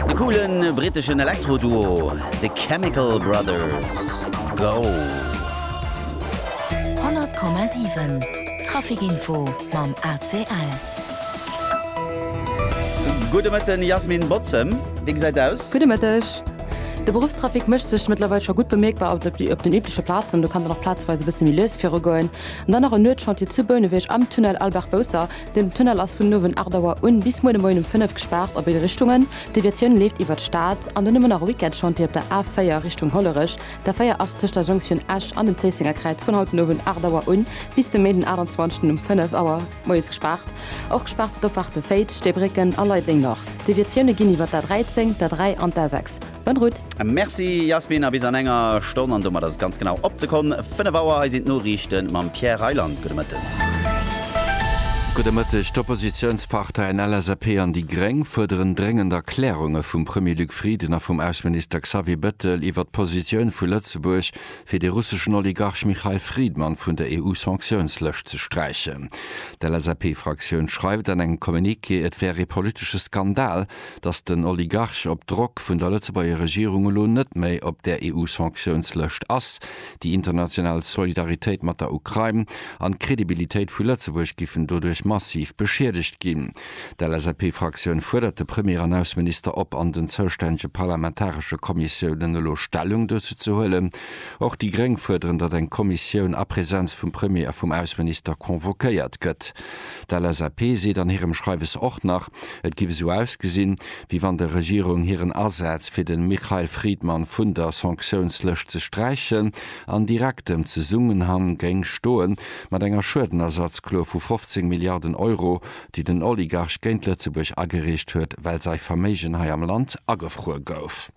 De coole britteschen Elektro-Duo The Chemical Brothers, Go! 100,7 Trafic-Info mam ACL. Gudde Mëtten, Yasmin Bozem, wéi gesäit et aus? Gudde Mëtteg. De Beruffstrafic mécht sech mëttlerweil scho gutt bemierkbar op den übleche Plazen. Do kann dann och plazeweis e bësse méi lues virugoen. An dann nach en Nuetschantier zu Bouneweg am Tunnel Albert Bousser. Den Tunnel ass vun den Owend 8 Auer un bis muer de Moien um 5 gespaart a béid Richtungen. D'Deviatioun leeft iwwert d'Stad an dunn ëmmer nach e Weekendchantier op der A4 Richtung Hollerech. D'A4 ass tëscht der Jonktioun Esch an dem Zéissenger Kräiz vun haut den Owend 8 Auer un bis de Méi den 28 um 5 Auer moies gespaart. Och gespaart si d'Opfaarte Féiz, Steebrécken a Leidenger. D'Deviatioune ginn iwwert d'A13, d'A3 an d'A6. Bonne route. Merci Yasmin a bis an enger Stonn an domat ass et ganz genau op d'Sekonn 5 Auer. Hei sinn d'Noriichten mam Pierre Reyland. Gudde Mëtten. Gudde Mëtteg. D'Oppositiounsparteien LSAP an déi Gréng fuerderen dréngend Erklärunge vum Premier Luc Frieden a vum Ausseminister Xavier Bettel iwwer d'Positioun vu Lëtzebuerg, fir de russeschen Oligarch Mikhail Fridman vun der EU-Sanktiounslëscht ze sträichen. D'LSAP-Fraktioun schreift an engem Communiqué, et wär ee politesche Skandal, datt den Oligarch op Drock vun der Lëtzebuerger Regierung elo net méi op där EU-Sanktiounslëscht ass. Déi international Solidaritéit mat der Ukrain an d'Credibilitéit vu Lëtzebuerg giffen doduerch massiv beschiedegt ginn. D'LSAP-Fraktioun fuerdert de Premier an Ausseminister op, an den zoustännege parlamentaresche Kommissiounen elo Stellung dozou ze huelen. Och déi Gréng fuerderen, datt eng Kommissioun a Präsenz vum Premier a vum Ausseminister convoquéiert gëtt. D'LSAP seet an hirem Schreiwes och nach, et giff esou ausgesinn, wéi wann der Regierung hiren Asaz fir den Mikhail Fridman vun der Sanktiounslëscht ze sträichen an direktem Zesummenhang géing stoen mat enger Schuedenersatzklo vu 15 Milliarden Euro, déi den Oligarch géint Lëtzebuerg agereecht huet, well säi Verméigen hei am Land agefruer gouf.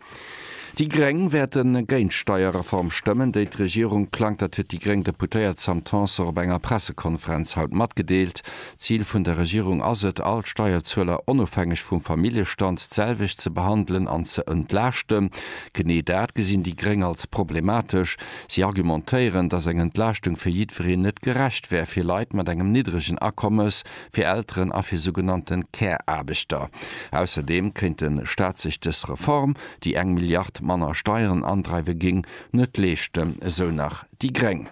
Déi Gréng wäerten géint d'Steierreform stëmmen, déi d'Regierung plangt. Dat huet déi gréng Deputéiert Sam Tanson op enger Pressekonferenz haut matgedeelt. D'Zil vun der Regierung ass et, all d'Steierzueler onofhängeg vum Familljestand d'selwecht ze behandelen an ze entlaaschten. Genee dat gesinn déi gréng als problematesch. Si argumentéieren, datt eng Entlaaschtung fir jiddwereen net gerecht wär fir Leit mat engem niddregen Akommes. fir Elteren a fir sougenannte Care-Aarbechter. Ausserdeem kéint de Staat sech dës Reform, déi eng Milliard manner Steieren andreiwe géing, net leeschten, esou nach déi gréng.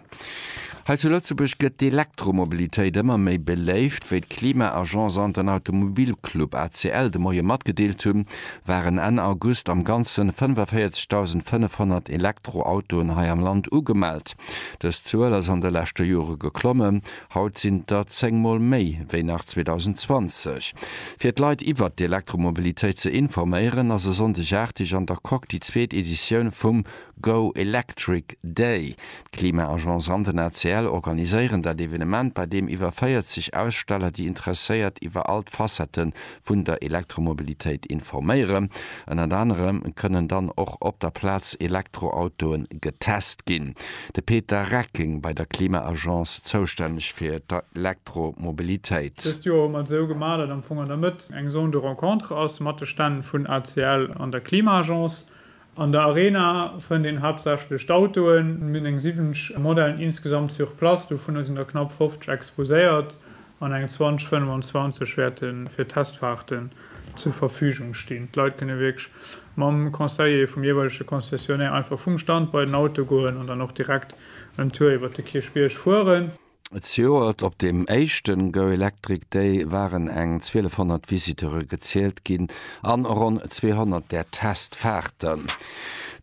Hei zu Lëtzebuerg gëtt d'Elektromobilitéit ëmmer méi beléift. Wéi d'Klima-Agence an den Automobilclub ACL de Moie matgedeelt hunn, waren Enn August am Ganze 45.500 Elektroautoen hei am Land ugemellt. Dës Zuel ass an de leschte Jore geklommen, Haut sinn der 10 Mol méi wéi nach 2020. Fir d'Leit iwwert d'Elektromobilitéit ze informéieren, ass e Sonndeg 8 Uhr an der Coque déi zweet Editioun vum Go Electric Day. D'Klima-Agence an den ACL organiséieren dat Evenement, bei deem iwwer 40 Aussteller déi Interesséiert iwwer all d'Facette vun der Elektromobilitéit informéieren. Ënnert anerem kënnen dann och op der Plaz Elektroautoe getest ginn. De Peter Recking, bei der Klima-Agence zoustänneg fir d'Elektromobilitéit. Dëst Joer hu mer et esou gemaach, datt am Fong an der Mëtt eng Zone de rencontre ass mat de Stänn vun ACL an der Klima-Agence. An der Arena fënnt een haaptsächlech d'Autoen. Mir hunn eng 70 Modellen insgesamt sur place, dovunner sinn der knapp 50 exposéiert an eng 20, 25 wäerte fir Testfaarten zur Verfügung stinn. D'Leit kënne wierklech mam Conseiller vum jeeweilege Concessionnaire einfach vum Stand bei den Auto goen an dann och direkt en Tour iwwert de Kierchbierg fueren. Zejoert op dem éischten Go Electric Day waren eng 1200 Visiteure gezielt ginn an ronn 200 der Testfahrten.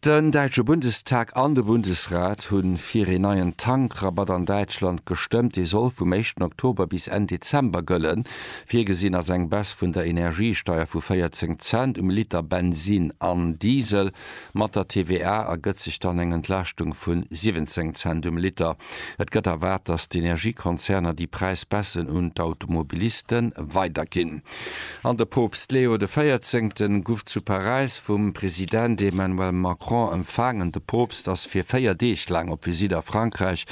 Den däitsche Bundestag an de Bundesrat hu fir een neien Tankrabatt an Däitschland gestëmmt. Dee soll vum éischten Oktober bis Enn Dezember gëllen. Virgesinn ass eng Baisse vun der Energiesteier vu 14 Cent um Liter Bensin an Diesel. Mat der TVA ergëtt sech dann eng Entlaaschtung vu 17 Cent um Liter. Et gëtt erwaart, datt d'Energiekonzerner déi Präisbaisse un d'Automobiliste weiderginn. An de Poopst Leo de Véierzéngten guff zu Paräis vum President Emmanuel Macron empfaangen. De Poopst ass fir 4 Deeg laang op Visitt a Frankräich.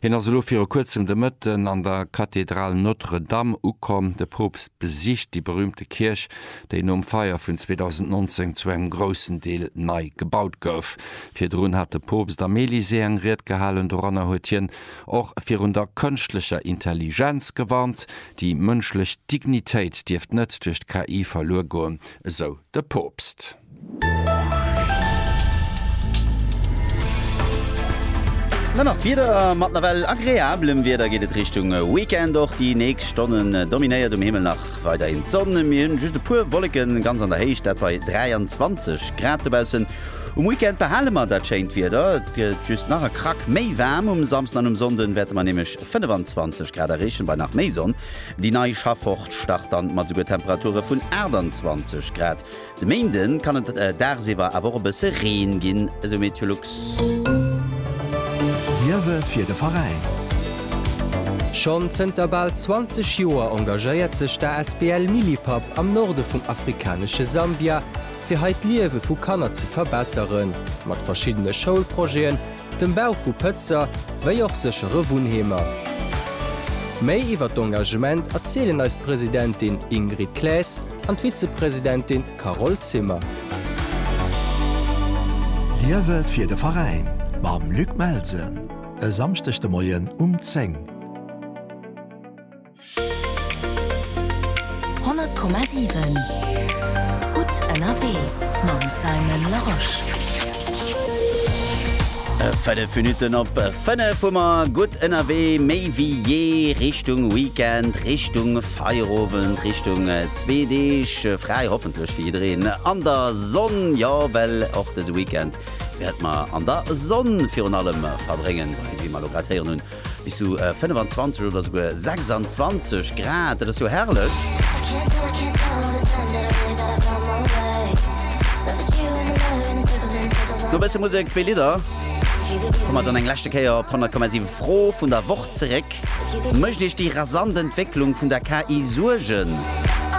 Hien ass elo viru kuerzem de Mëtten an der Kathedral Notre-Dame ukomm. De Poopst besicht déi berüümte Kierch déi nom Feier vun 2019 zu engem groussen Deel nei gebaut gouf. Virdrun hat de Poopst am Elysée eng Ried gehalen, doranner huet hien och virun der kënschtlecher Intelligenz gewarnt. Déi mënschlech Dignitéit dierft net duerch d'KI verluer goen, esou de Poopst. Dann nach d'Wieder, Mat nawell agreablem Wieder geet et Richtung Weekend. Och déi nächst Stonnen dominéiert um Himmel nach weiderhin d'Sonn, mir hunn just e puer Wolleken ganz an der Héicht, dat bei 23 Grad dobaussen. Um Weekend behale mer dat schéint Wieder, et gëtt just nach e Krack méi waarm. Um Samsden an um Sonnden wäerte mer nämlech 25 Grad erreechen bei nach méi Sonn. Déi nei Schaffwoch start dann mat souguer Temperature vun 28 Grad. De Méinde kann et dagsiwwer awer och e bësse Reen ginn, esou Meteolux. Liewe fir de Veräin! Schonn zënter bal 20 Joer engagéiert sech d'ASBL Millipap am Norde vum afrikanesche Sambia, fir hei d'Liewe vu Kanner ze verbesseren, mat verschiddene Schoulprojeten, dem Bau vu Pëtzer wéi och séchere Wunnheemer. Méi iwwer d'Engagement erzielen eis d'Presidentin Ingrid Claes an d'Vizepresidentin Carole Zimmer. Liewe fir de Veräin mam Luc Melsen e Samschdeg de Moien um 10. 100,7 gutt ënnerwee mam Simon Larosche. Fënnef Minutten op fënnef hu mer gutt ënnerwee, méi wéi jee Richtung Weekend, Richtung Feierowend, Richtung zwee Deeg fräi, hoffentlech fir jiddereen an der Sonn. Jo, well och dëse Weekend wäerte mer an der Sonn virun allem verbréngen, wéi mer elo grad héieren hunn. Bis zu 25 oder souguer 26 Grad, dat ass jo herrlech! No e bësse Musek, zwee Lidder, komme mer dann eng leschte Kéier op d'Honnertkommasiw Fro vun der Woch zeréck, Mécht Iech déi rasant Entwécklung vun der KI Suergen?